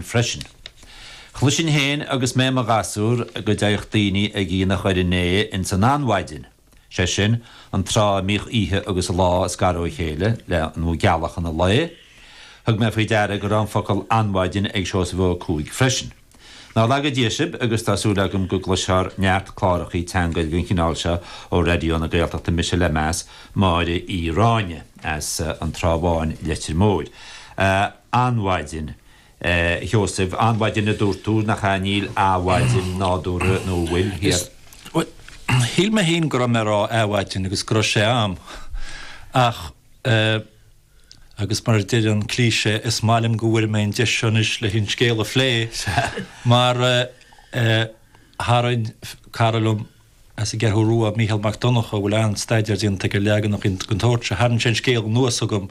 freisin. Chloisinn fhéin agus mé i mo ghasúr go dtéadh daoine ag aonach Dhoire an Fhéich ins an an-mhaidin, sé sin, an tráth a mbíodh oíche agus lá ag scaradh ó chéile le gealachan an lae. Thug mé faoi deara go raibh an focal an-mhaidin ag Seosamh Ó Cuaig freisin. Ná laga Dia sibh agus tá súil agam go gcloisfear neart clárachaí teanga eile den chineál seo ó Raidió na Gaeltachta Mise le meas, Máire Uí Ráinne as an Trá Bháin, Leitir Móir. An-mhaidin. A Sheosaimh, an-mhaidin a dúirt tú, nach ea? Níl 'adhmhaidin' nádúrtha, nó an bhfuil? Is, bhuel, shíl mé féin go raibh mé ag rá 'adhmhaidin' agus go raibh sé a'm, ach eh. agus mar a deir an cliché, is maith liom go bhfuair mé an deis seo anois leis an scéal a phlé, mar eh. tharraing cara liom, As an gCeathrú Rua, Mícheál Mac Donnacha, a bhfuil an-staidéar déanta aige ar leaganacha den tsórt seo. Tharraing sé an scéal anuas chugam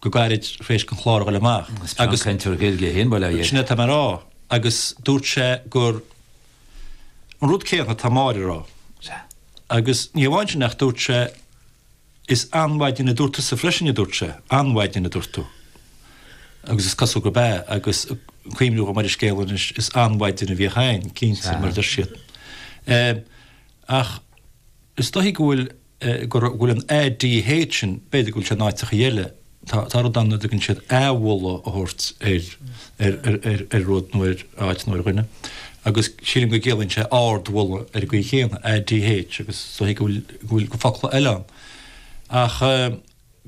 go gairid tar éis don chlár a ghoil amach. Is an-chainteoir Gaeilge é féin, bail air. Sin é atá mé a rá, agus dúirt sé gur an rud céanna atá Máire a rá. Sea. Agus ní hamháin sin ach dúirt sé. Is an-mhaidin a dúirt tusa freisin, a dúirt sé. An-mhaidin a dúirt tú. Agus is cosúil gurb ea, agus cuimhniú dhom ar an scéal anois, is an-mhaidin a bhí againn, cinnte, mar a deir siad. Ach is dóichí go bhfuil, go bhfuil an ADH sin, b'fhéidir go bhfuil sé in áiteacha eile, Tá rud ann a dtugann siad adhmholadh a thabhairt ar rud nó ar áit nó ar dhuine, agus sílim go gciallaíonn sé ard-mholadh ar an gcaoi chéanna, ADH, agus is dóichí go bhfuil focla eile ann. Ach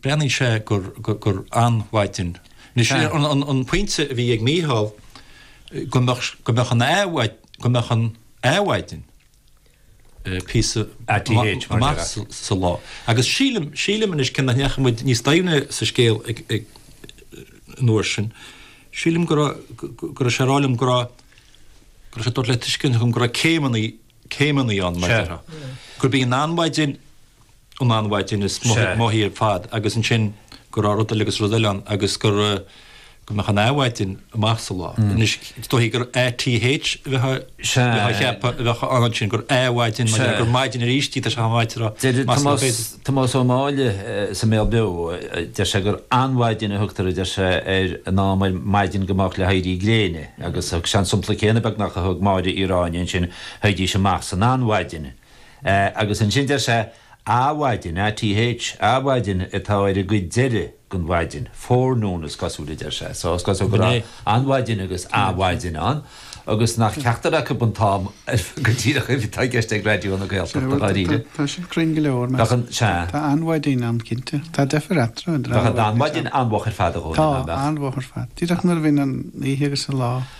breathnaíonn sé gur an-mhaidin. Anois, an pointe a bhí ag Mícheál, go mbeadh an adhmhaidin, píosa amach sa lá. Agus sílim, sílim anois, cé nach ndeachaigh muid níos doimhne sa scéal an uair sin, sílim go raibh, go raibh sé ag rá liom go raibh, go raibh sé ag tabhairt le tuiscint dhom go raibh céimeanna, céimeanna ann, mar déarfá. Gurb í an an-mhaidin, an an-mhaidin is moichí ar fad agus ansin go raibh rud eile agus rud eile ann agus go raibh, go mbeadh an adhmhaidin amach sa lá. Anois, is dóichí gur ATH a bheadh á cheapadh a bheadh ann ansin, gur athmhaidin mar gheall gur maidin aríst í tá sé chomh maith le Deir Tomás, Tomás Ó Máille sa mBéal Beo, deir sé gur an-mhaidin a thugtar, a deir sé, ar an am ar maidin go moch le héirí gréine agus thug sé an sampla céanna beagnach a thug Máire Uí Ráinne ansin, théidís amach san an-mhaidin. Agus ansin deir sé, Athmhaidin, ATH, athmhaidin atá ar an gcuid deireadh den mhaidin. Forenoon is cosúil a deir sé. So is cosúil go raibh an mhaidin agus athmhaidin ann, agus nach ceachtar acu an t-am go díreach atá i gceist ag Raidió na Gaeltachta, dháiríre. Tá sin cruinn go leor, mar tá adhmhaidin ann, cinnte. Tá deifir eatarthu, an dá rud. Tá adhmhaidin an-mhoch ar fad a Dhónaill, nach mbeadh? Tá, an-mhoch ar fad. Díreach nuair a bhíonn an oíche agus an lá.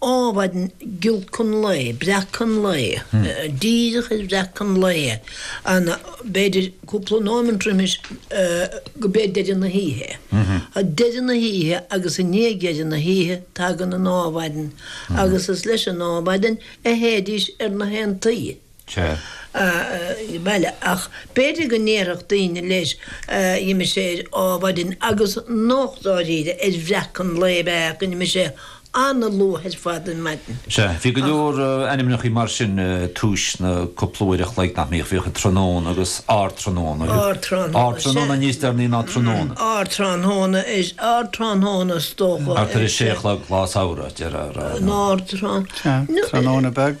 Adhmhaidin, gealachan lae, breacachan lae, díreach ar bhreacachan lae, ana, b'fhéidir cúpla nóimint roimis, gob é deireadh na hoíche. Ag deireadh na hoíche agus i ndiaidh dheireadh na hoíche tagann an adhmhaidin agus is leis an adhmhaidin a théidís ar na haontaí. Sea. Aye, bhuel, ach b'fhéidir go ndéarfadh daoine leis, d'imigh sé adhmhaidin, agus nach dáiríre ar bhreac an lae a bheadh acu, nó d'imigh sé an-luath ar fad ar maidin. Sea. Bhí go leor ainmneacha mar sin tar éis na cúpla uair a chloig nach mbíodh, bhíodh an tráthnóna agus ardtráthnóna. Ardtráthnóna, Ardtráthnóna níos deireanaí ná tráthnóna. Ardtráthnóna, ardtráthnóna is dócha. Thart ar a sé a chlog lá samhraidh, deir ár. Nó ardtráthnóna. Sea. Tráthnóna beag.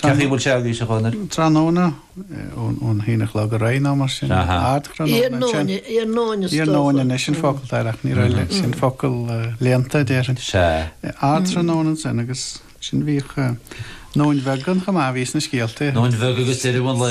Cad é a bhfuil sé agaibhse a Dhónaill? Tráthnóna, ón haon a chlog ar aghaidh nó mar sin, ardthráthnóna. Iarnóin anois an focal atá air ach níl a fhios agam sin focal léannta a déarfainn. Sea. Ardthráthnóna ansin agus ansin bhíodh nóin bheag ann chomh maith, bhí sna scéalta. Nóin bheag agus deireadh an lae.